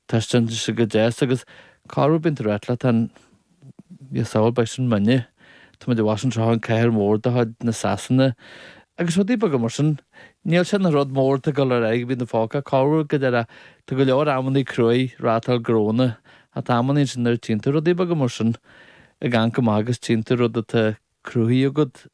Tá sé sin go deas agus cá raibh bíonn tú ag ráit leat féin Ní samhail beidh sin muidne Tá muid abhus anseo i gcathair mhór de chuid na Sasana agus rudaí beaga mar sin Níl sin an rud mór atá ag dul ar aghaidh bhí na fágtha cá raibh go deire Tá go leor amannaí cruaidh ag reáchtáil gnó ach tá amannaí ansin nuair a tchíonn tú rudaí beaga mar sin ag ann go maith agus tchíonn tú rud atá cruthaithe agat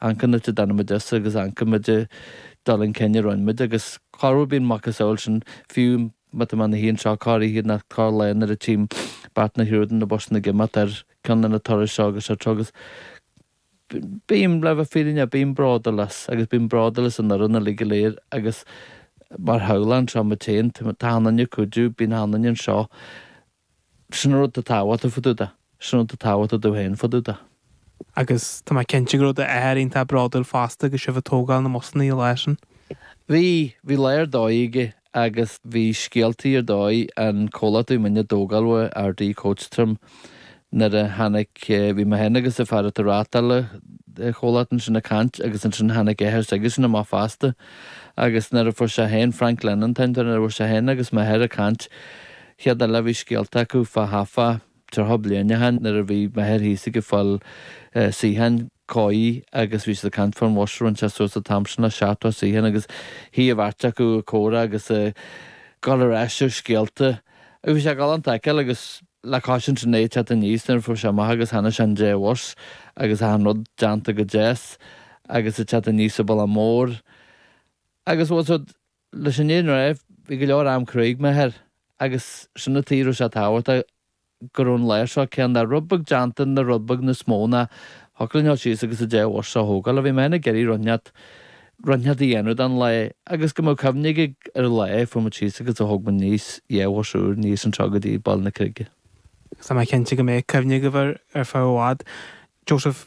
An cén áit a dtáinig muid as agus an cá mhéad dul chun cinn a rinne muid agus cár bhfuil bíonn muid cosúil le sin fiú má tá mé i mo shuí anseo corroíche nó corrlá nuair a tchím beart na hIordan na busanna ag imeacht ar cheann de na turais seo agus seo agus bím le bheith fírinneach bím bródúil as agus bím bródúil as an fhoireann uilig go léir agus mar shampla anseo má tchíonn tú achan duine ag cuidiú bíonn achan duine anseo Sin an rud atá tábhachtach fá dtaobh de. Sin an rud atá tábhachtach domh féin fá dtaobh de. Agus tá mé cinnte go raibh d'athair iontach bródúil fosta agus sibh ag tógáil na mbusannaí i láthair sin. Bhí, bhí lá ar dóigh aige agus bhí scéaltaí ar dóigh, an comhlacht a bhí muid á dtógáil uaidh, Ardee Coach Trim, nuair a tháinig, bhí mé féin agus an fear atá a' reáchtáil an chomhlacht ansin a' caint agus ansin tháinig athair s'aigesean amach fosta agus nuair a fuair sé féin, Frank Lennon an t-athair, nuair a fuair sé féin agus m'athair a' caint, Chéile bhí scéalta acu fá thart fá tríocha bliain ó shin nuair a bhí m'athair thíos ag fáil suíocháin cói agus bhí siad ag caint fán bhus a rinne siad suas an t-am sin le seachtó suíochán agus shuigh an bheirt acu ag comhrá agus ag dul ar ais ar scéalta agus bhí sé galánta a fheiceáil agus le cois sin é ag teacht aníos nuair a fuair sé amach agus chonaic sé an dá bhus agus achan rud deánta go deas agus ag teacht aníos an bealach mór agus bhfuil a fhios agat Leis an fhírinne a ráit, bhí go leor am cruaidh ag m'athair agus sin an tuige a raibh sé tábhachtach go raibh an lá seo cineál de rud beag déanta ina rud beag níos mó ná thiocfadh linn a ghoil síos agus an dá bhus seo a thógáil ach bhí mé féin ag iarraidh rud inteacht rud inteacht a dhéanamh den lá agus go mbeadh cuimhne aige ar an lá a chuaigh muid síos agus a thóg muid aníos dhá bhus úr aníos anseo go dtí Baile na Creige. Tá mé cinnte go mbeidh cuimhne agaibh air ar feadh i bhfad. Joseph,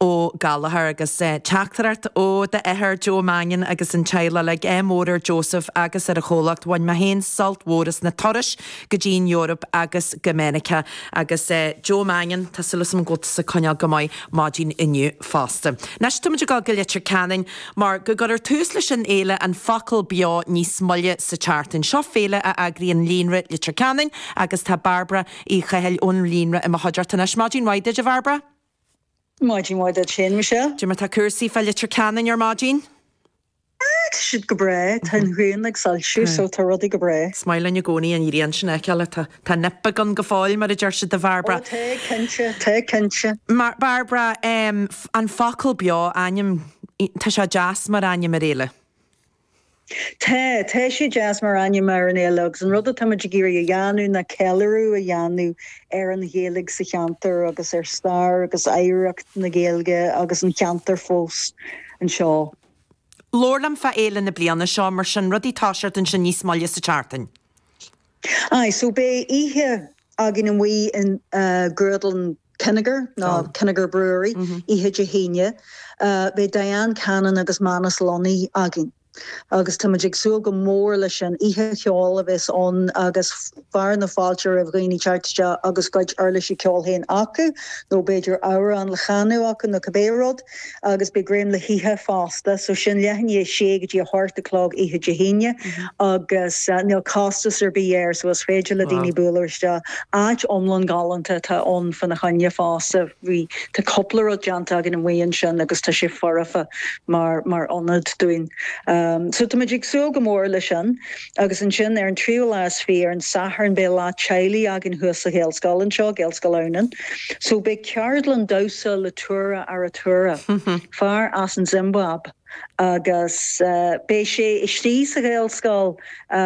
Ó Gallagher, agus teachtaireacht ó d'athair Joe Mangan agus an teaghlach uilig. Ádh mór ar Joseph agus ar a chomhlacht. Bhain mé féin sult mór as na turais go dtí an Eoraip agus go Meiriceá. Agus Joe Mangan, tá súil agam go bhfuil tusa ag coinneáil go maith maidin inniu fosta. Anois, táimid ag dul go Leitir Ceanainn mar go gcuirear tús leis an fhéile An Focal Beo níos moille sa tseachtain. Seo féile a eagraíonn Líonra Leitir Ceanainn agus tá Bairbre Uí Chathail ón Líonra i mo chuideachta anois. Maidin mhaith duit, a Bhairbre. Maidin mhaith duit féin, Michelle. Cad é mar atá cúrsaí fá Leitir Ceanainn ar maidin. Ah, tá siad go breá. Tá an ghrian ag soilsiú so tá rudaí go breá. Is maith linn i gcónaí an ghrian sin a fheiceáil. Tá nip beag ann go fóill, mar a deir siad, a Bhairbre. Oh, tá, cinnte, tá, cinnte. Mar, Bairbre, an focal beo, ainm, tá sé deas mar ainm ar fhéile. Tá. Tá sé deas mar ainm ar an fhéile agus an rud atá muid ag iarraidh a dhéanamh ná ceiliúradh a dhéanamh ar an Ghaeilge sa cheantar agus ar stair agus oidhreacht na Gaeilge agus an cheantair fosta anseo. Labhair liom fá fhéile na bliana seo mar sin rudaí atá ag startáil ansin níos moille sa tseachtain. Aye, so beidh oíche againn amuigh i nGrúdlann Kinnegar, nó Kinnegar Brewery, oíche Dé hAoine. Beidh Diane Cannon agus Manus Lunny againn agus táimid ag súil go mór leis sin. Oíche cheoil a bheas ann agus fearadh na fáilte roimh dhaoine teacht isteach agus a gcuid uirlisí ceoil féin acu, nó b'fhéidir amhrán le canadh acu nó cibé rud. agus beidh greim le hithe fosta so sin leath i ndiaidh a sé go dtí a hocht a chlog oíche Dé hAoine agus níl costas ar bith air so is féidir le daoine bualadh isteach. Áit iontach galánta atá ann fána choinne fosta. Bhí tá cúpla rud déanta againn amuigh ansin agus tá sé foirfe mar mar ionad dúinn so táimid ag súil go mór leis sin. Agus ansin ar an tríú lá is fiche, ar an Satharn, beidh lá teaghlaigh againn thuas sa Ghaelscoil anseo, Gaelscoil Adhamhnáin. So beidh ceardlann damhsa le Tura Arutura, fear as an tSiombáib agus beidh sé istigh sa Ghaelscoil.